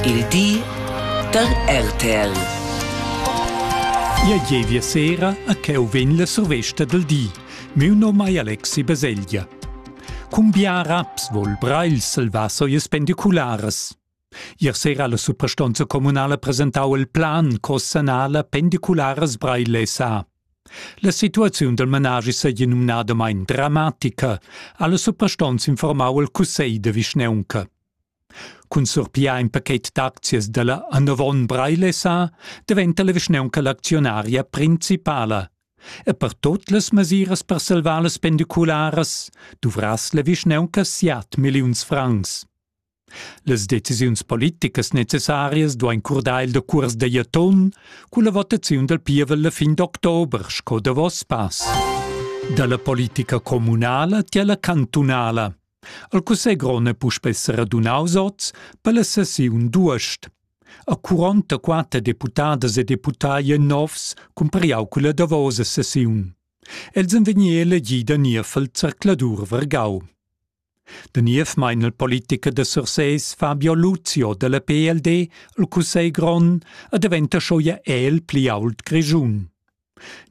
Il di da RTL. Ia gievia sera a cheu vegn la survesta del di. Miu nom ei Alexi Baselgia. Cum biaraps vol Breil salvaso ies pendiculares. Ier sera la suprastonza comunala presentau il plan co sanala pendiculares Breil SA. La situaziun del managi seigi numnadamein dramatica, alla suprastonza informau il cussegl de vischneunca. Cun surpiar in pachet d'aczias dalla Annovon Breilessa daventa la vischnaunca l'actionaria principala. E per tot las mesiras per salvar las pendicularas duvrass la vischnaunca siat milliuns francs. Las decisiuns politicas necessarias duein curdar il decuors da Jaton culla votaziun dal pievel la fin d'october sco davos pass. Dalla politica communala tiella cantunala El cussegl grond è puspè seradunaus oz per la sessiun d'uost. A 44 deputadas e deputai novs cumpariau culla davosa sessiun. Els han vegni elegì da niev al zercladur Vergau. Da niev mein il politiker da Sursés Fabio Luzio dalla PLD al Cussegl grond a daventa scho ja el pli ault Grischun.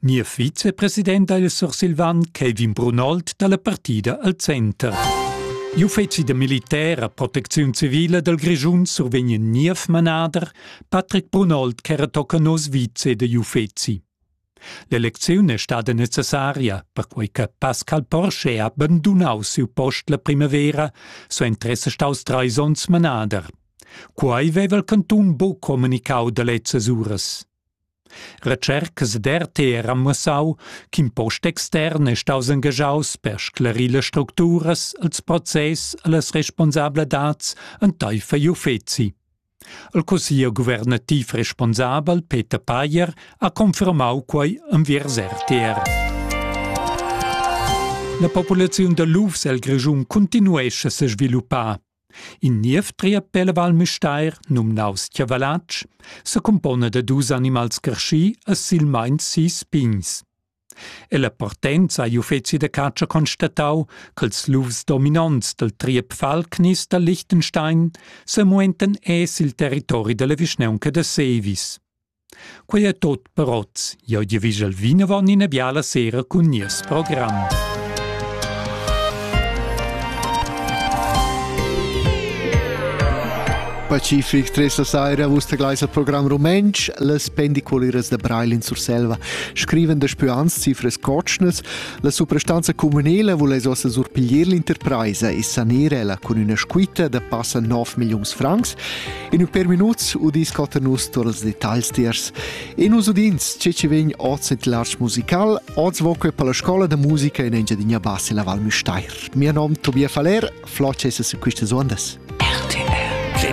Gnir vicepresident ha il sursilvan Kevin Brunold da la partida al center. Gli uffizi da militer a protecziun civile dal Grischun survegnen niev manader Patrick Brunold ch'era tocca nos vice dagli uffizi. L'elecziun è stada necessaria, perquei che Pascal Porsche ha abandonau siu post la primavera, so interesse staus treis onns manader. Quai veva il cantun buc communicau da lezzas uras. Recercas d'RTR han muossau ch'in post extern è staus engagiaus per sclarir las structuras, ils process e las responsabladats enteifer igl uffeci. Il cussiglier guvernativ responsabel Peter Payer ha confermau quei enviers RTR. La populaziun da lufs el Grischun continuescha se sviluppar. In niev triapel Val Müstair, numnaus Chiavalatsch, secumpona da dus animals creschì e silmeins sis pigns. Ella partenza ha gli uffeci da catscha constatau ch'ils lufs dominonts dal triep Falknis da Liechtenstein semuentan es il territori dalla vischnaunca da Sevis. Quei è tot per oz. Jeu di vigel vinavon ina biala sera cun nies program. Pacific, tres la saira, vus tegleis al program rumentsch, las pendiculiras da Breilin Surselva scriven da spians cifres cotschnas, la suprastanza comunela vuless ossa surpiglier l'interpresa e sanere la con una squitta da passa 9 millions francs In ur per minuts udis cotta nus tur els detagls tiers. E nus udins ce che vegn oz et l'art musical, oz voque per la scola da musica in Engiadina Bassi la Val Müstair. Mio nom Tobias Faller, floce es a quistas ondas. RTL